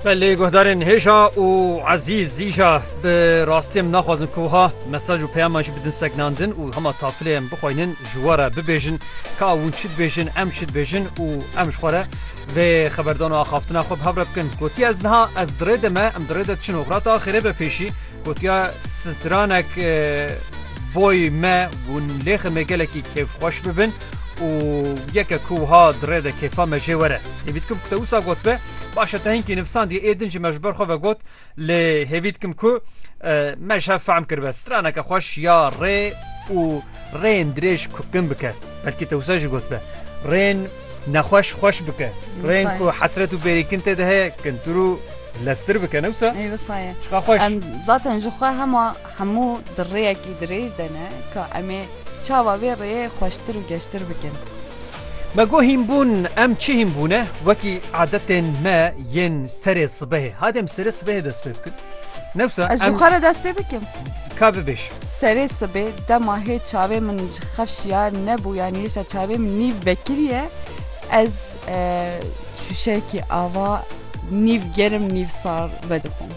Belê guhdarên hêja û ezîz îja bi rastî em naxwazin ku wiha mesaj û peyaman jî bidin segnandin û hema tafilê em bixwînin ji we re bibêjin ka hûn çi dibêjin em çi dibêjin û em ji xwe re vê xeberdan û axaftina xwe bi hev re bikin. Gotiye ez niha ez di rê de me em di rê de diçin û xirata axêrê be pêşî gotiye stranek boy me hûn lêximê gelekî kêfxweş bibin. û yeke ku wiha di rê de kêfa me jê were. Hêvî dikim ku te wisa gotbe, baş e te hinkî nivisandiye ê din ji me ji ber xwe ve got lê hêvî dikim ku me ji hev fehm kiribe. Straneke xweş ya rê û rêyên dirêj ku kin bike. Belkî te wisa jî gotbe. Rêyên nexweş xweş bike. Rêyên ku hesret û bêrîkin tê de heye kintir û leztir bike ne wisa? Ê wisa ye. Çiqa xweş. Em zaten ji xwe hema Hemû di rêyekî dirêj de ne ka em ê çawa vê rêyê xweştir û geştir bikin. Me got hînbûn, em çi hînbûn e wekî adetên me yên serê sibehê. Hadi em serê sibehê dest pê bikin. Newsa Ez ji em xwe re dest pê bikim. ka bibêj. Serê sibê dema hê çavê min ji xev şiyar nebû yanî hêşta çavê min nîv vekiriye ez şûşeyekî ava nîv germ nîv sar vedixwim.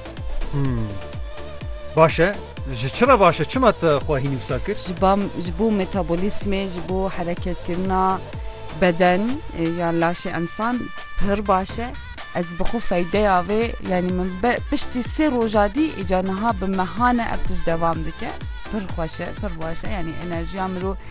Baş e ji çi re baş e çima te xwe hîn wisa kir? Ji ba ji bo metabolîsmê ji bo hereketkirina beden ya laşê ensan pir baş e. Ez bi xwe feydeya vê yanî min piştî sê roja dî îca niha bi mehane ev tişt devam dike. Pir xweş e pir baş e yanî enerjiya mirov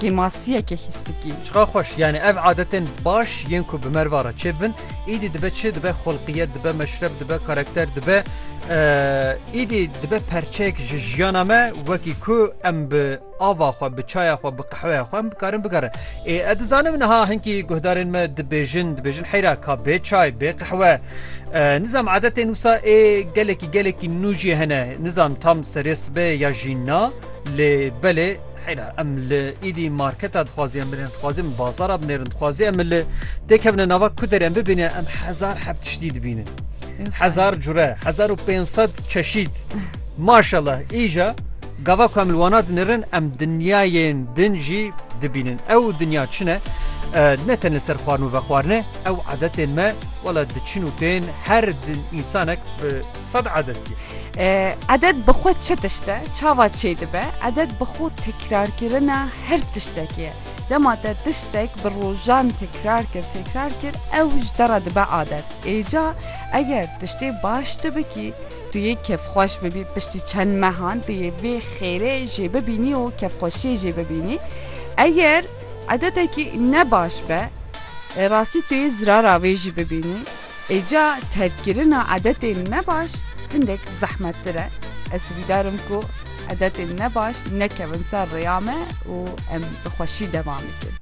Kêmasiyeke hîstikî. Çiqa xweş, yanî ev adetên baş yên ku bi merva re çêbibin, îdî dibe çi? Dibe xulqiyet, dibe meşreb, dibe karakter, dibe îdî dibe perçeyek ji jiyana me wekî ku em bi ava xwe, bi çaya xwe, bi qehweya xwe em bikarin bigerin. Ê ez dizanim niha hinkî guhdarên me dibêjin, dibêjin heyra ka bê çay, bê qehwe. Nizam adetên wisa ê gelekî gelekî nû jî hene. Nizam tam serê sibê ya jî na. Lê belê heyra em li îdî marketa dixwazê em binêrin dixwazê em bazara binêrin dixwazê em li tê kevine nava ku derê em bibîne em hezar heb tiştî dibînin. Hezar cure, hezar û pênc sed çeşîd. Maşallah îja gava ku em li wana dinirin em dinyayên din jî dibînin. Ew dinya çi ne? ne ten li ser xwarin û vexwarine ew adetên me wala diçin û tên her din însanek bi Sed edet ye. Edet bi xwe çi tişt e, çawa çêdibe? Edet bi xwe tekrarkirina her tiştekê ye. Dema te tiştek bi rojan tekrar kir, tekrar kir, ew ji te re dibe adet. Êca eger tiştê baş tu bikî, tu yê kêfxweş bibî, piştî çend mehan tu yê vê xêrê jê bibînî û kêfxweşiyê jê bibînî. Eger edetekî ne baş be, rastî tu yê zirara wê jî bibînî. Îca terkkirina edetên nebaş hindek zehmettir e. Ez hivîdar im ku edetên nebaş nekevin ser rêya me û em bi xweşî devam bikin.